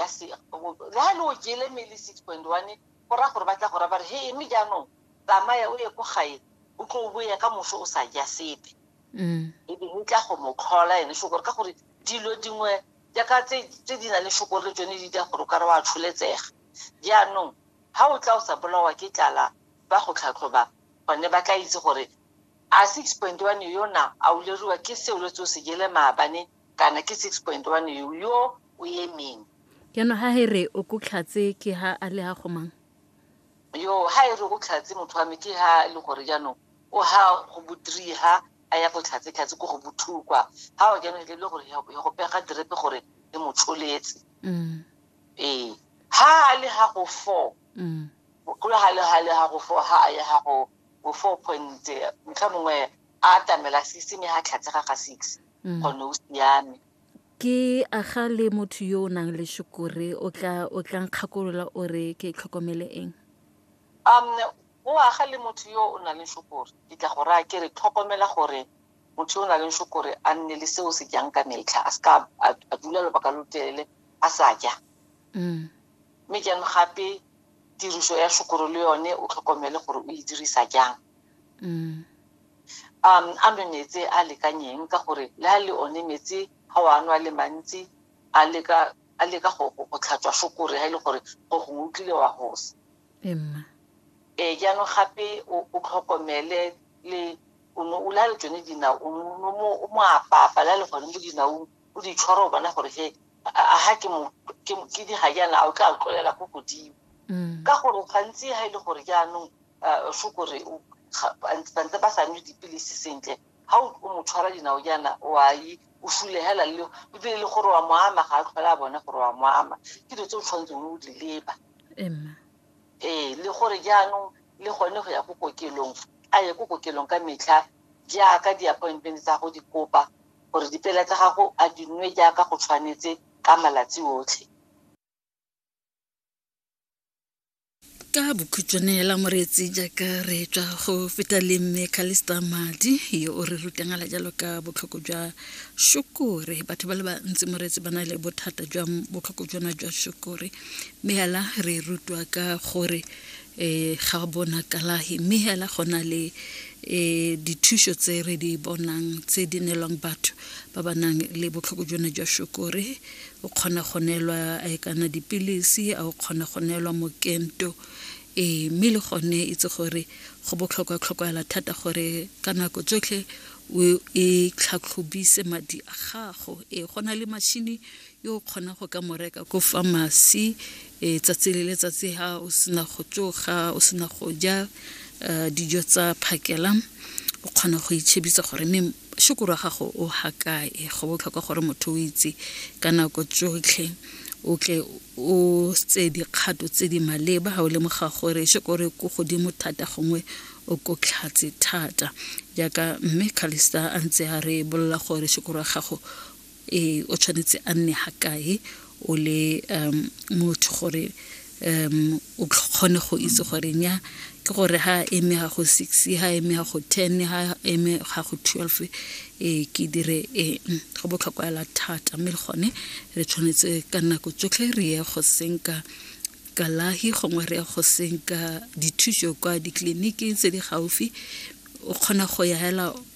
ya se le ha le o jele mele six point one go raya gore ba tla go raya bare he mme jaanong tsamaya o ye ko gae o tlo o boya ka moso o sa ja sepe mm. e be o tla go mo tlhola ene shokore ka gore dilo dingwe jaaka tse di na le shokore le tsone di dira gore o ka re wa tsholetsega jaanong ha o tla o sa bolawa ke tlala ba go tlhatlhoba gone ba tla itse gore a six point one yona a o leriwa ke seo le tse o se jele maabane kana ke 6.1 yo yo o emeng jaanong ga e re o kotlhatse ke ha a le ha gomang yo ha e re o tlhatse motho wa me ke ha e le gore jaanong o ha go botrii ha a ya go tlhatse tlhatse ko go bothukwa ha o jaanong e le gore ya go pega direpe gore e mo tsholetse mm. ee ha a le ha go four mm. go le ha le ha le ha go four ha a ya ha go go four point motlha mongwe a atamela six mme ha tlhatse ga ga six mm. gone o siame ke aga le motho yo o nang le shukure o tla o tla nkgakolola o re ke tlhokomele eng um o aga le motho yo o nang le shukure ke tla go raya ke re tlhokomela gore motho yo o nang le shukure a nne le seo se jang ka metlha a seka a dula lobaka lo telele a sa ja mm. mme jaanong gape tiriso ya shukure le yone o tlhokomele gore o e dirisa jang mm. um a nwe metsi a lekanyeng ka gore le a le one metsi ga o a nwa le mantsi a leka a leka go tlhatswa fokore ga e le gore go gongwe o tlile wa gosa ee jaanong gape o tlhokomele le o ne o la le tsone dinao o mo apapa la le gone mo dinaong o di tshwara o bona gore he ga ke ke di ga jaana a o tla tlolela ko godimo mm. ka gore gantsi ga e le gore jaanong a fo kore bantse ba sa nwe dipilisi sentle ga o mo tshwara dinao jaana o a ye o fulegela le ebile le gore wa mo ama ga a tlhole a bone gore wa mo ama ke dilo tse o tshwanetseng o di leba ee le gore jaanong le gone go ya ko kokelong a ye ko kokelong ka metlha jaaka di-appointment tsa go di kopa gore dipela tsa gago a di nwe jaaka go tshwanetse ka malatsi otlhe ka bokhutšwane hela moreetsi jaaka re tswa go feta le mme calista madi yo o re rutangala jalo ka botlhoko jwa shokore batho ba le bantsi moreetsi ba na le bothata jwa botlhoko jona jwa shokore mme hela re rutwa ka gore um ga bona kalahi mme hela go na le um dithuso tse re di bonang tse di nelwang batho ba ba nang le botlhoko jona jwa shokore o kgona go neelwa eh, kana dipilisi a o kgona go neelwa mokento ee mme le gone itse gore go botlhokwa tlhokoela thata gore ka nako tsotlhe o e tlhatlhobise madi a gago ee go na le mashini yo o kgonang go ka mo reka ko famasi e tsatsi le letsatsi ha o sena go tsoga o sena go ja uh, dijo tsa phakela o kgona go itšhebisa gore mme shokoro wa gago o hakae go botlhokwa gore motho o itse ka nako tsotlhe o tle o tse dikgato tse di maleba ga o lemoga gore shokore ko godimo thata gongwe o ko tlhatse thata jaaka mme calista a ntse a re bolola gore shokoro wa gago e o tshwanetse a nne ga kae o le um motho gore um o kgone go itse gore nya ke gore ha eme ga go six ha eme ga go ten ha eme ga go twelve e ke dire e go botlhokwa ela thata mme le gone re tshwanetse ka nako tsotlhe re ye go senka kalahi gongwe re ya go senka dithuso kwa ditleliniking tse di gaufi o kgona go ya hela